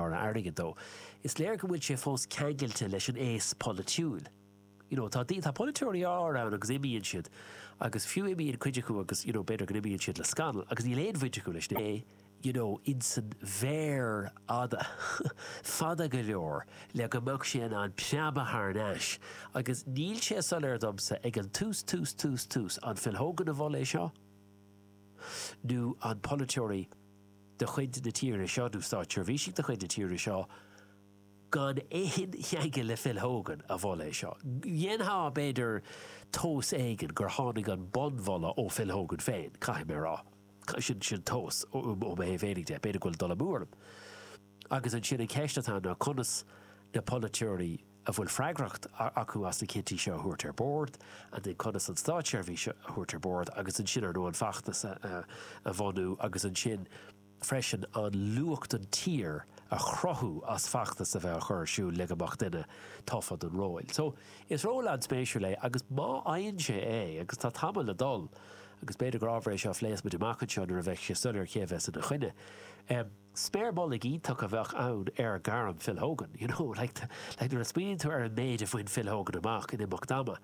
airgead dó. Is léir go bhfuil sé fós ceangailte leis an aos polaitiúil. You know, tá, tá polaiteoirí ann agus imíonn siad agus fiú imíonn cuid acu agus, you know, b'fhéidir go n-imíonn siad le scannal agus níl aon bhaint acu leis na, you know, insan bhféar fada, fada go leor le go mbeadh sé in ann preabadh thar n-ais agus níl sé soiléir domsa ag an tús, tús, tús, tús, an Phil Hogan a mhol é seo nó an polaiteoirí de chuid na tíre seo, nó státseirbhísigh de chuid na tíre seo gan aon cheangal le Phil Hogan a mhol é seo. Dhéanfá, b'fhéidir, tomhas éigin gur tháinig an bunmholadh ó Phil Hogan féin, caithfidh mé a rá. Sin tomhas ó mo thaobh féinig de, b'fhéidir go bhfuil dul amú orm. Agus ansin an cheist atá ann ná conas na polaiteoirí, a bhfuil freagracht acu as na cinntí seo a thabhairt ar bord, conas an státseirbhís a thabhairt ar bord agus ansin, ar ndóigh, an feachtas a bhunú agus ansin freisin an luach don tír a chruthú as feachtas a bheith á chur ar siúl le go mbeadh duine tofa don róil so is ról an-spéisiúil é agus má fhaigheann sé é agus tá tamall le dul agus b'fhéidir gur ábhar é seo a phléas muid amach anseo nuair a bheidh sé soiléir cé a bheas ina choinne. Sméar mullaigh iontach a bheadh ann ar ghairm Phil Hogan, you know, like, like nuair a smaoiníonn tú ar an méid a bhain Phil Hogan amach in imeacht ama,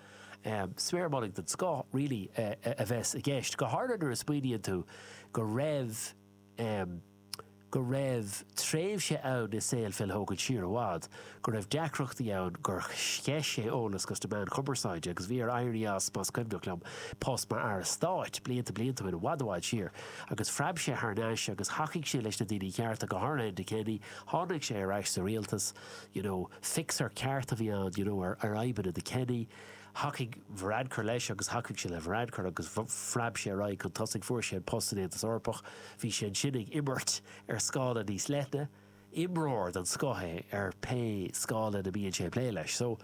sméar mhullaigh den scoth really a bheas i gceist, go háirithe nuair a smaoiníonn tú go raibh, go raibh tréimhse ann i saol Phil Hogan siar i bhfad, go raibh deacrachtaí ann, gur sceith sé eolas chuig na meáin chumarsáide, agus bhí air éirí as, más cuimhneach liom, post mar Aire Stáit, blianta blianta ó shin, i bhfad i bhfad siar. Agus phreab sé thar n-ais, agus thacaigh sé leis na daoine cearta, go háirithe Enda Kenny, tháinig sé ar ais sa rialtas, you know, fixer ceart a bhí ann, you know, ar fhadhbanna do Kenny, thacaigh Varadkar leis, agus thacaigh sé le Varadkar, agus phreab sé ar aghaidh chun tosaigh, fuair sé an post san Aontas Eorpach, bhí sé ansin ag imirt ar scála níos leithne, imreoir den scoth é ar pé scála a mbíonn sé ag plé leis. So,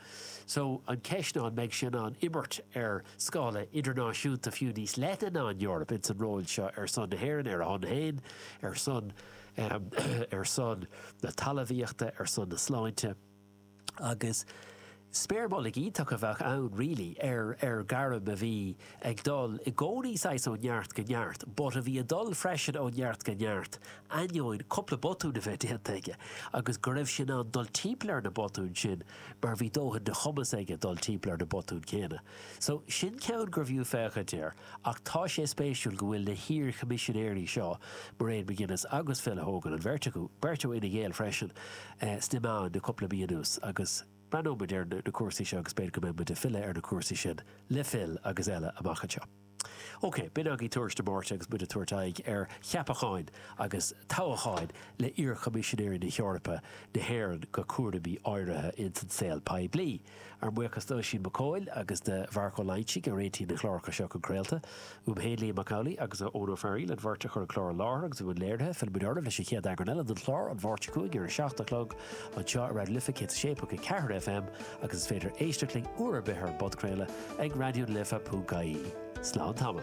so, an ceist ná an mbeidh sé in ann imirt ar scála idirnáisiúnta fiú níos leithne ná an Eoraip ins an ról seo ar son na hÉireann, ar a shon féin, ar son, ahem, ar son na talamhaíochta, ar son na sláinte. agus sméar mhullaigh iontach a bheadh ann really ar ar ghairm a bhí ag dul i gcónaí saghas ó neart go neart but a bhí a dul freisin ó neart go neart ainneoin cúpla botún a bheith déanta aige agus go raibh sé in ann dul timpeall ar na botúin sin mar bhí dóthain de chumas aige dul timpeall ar na botúin céanna so sin ceann gurbh fhiú féachaint air. Ach tá sé spéisiúil go bhfuil na hiar-Choimisinéirí seo, Mairéad McGuinness agus Phil Hogan, an bheirt acu, beirt ó Fhine Gael freisin, sna meáin le cúpla mí anuas agus breathnóidh muid ar na cúrsaí seo agus b'fhéidir go mbeidh muid ag filleadh ar na cúrsaí sin le Phil agus eile amach anseo. Ok, b'in agaibh tuairisc na Máirte agus muid ag tabhairt aghaidh ar cheapacháin agus toghacháin le iar-Choimisinéirí na hEorpa, na hÉireann go cúraimí áirithe ins an saol poiblí. Ár mbuíochas d'Oisín Mac Coill agus de Mharc Ó Loingsigh a réitigh na cláracha seo chun craolta. Uaim féin, Liam Mac Amhlaigh agus ó Eoin Ó Fearghaíl, an bheirt a chuir an clár i láthair agus i mbun léirithe. Fillfimid oraibh leis an chéad eagrán eile den chlár, An Mháirt 5 ar an seacht a chlog, anseo ar Raidió na Life 106.4 FM agus is féidir éisteacht linn uair ar bith ar an bpodchraoladh ag raidiolife.ie. Slán tamall.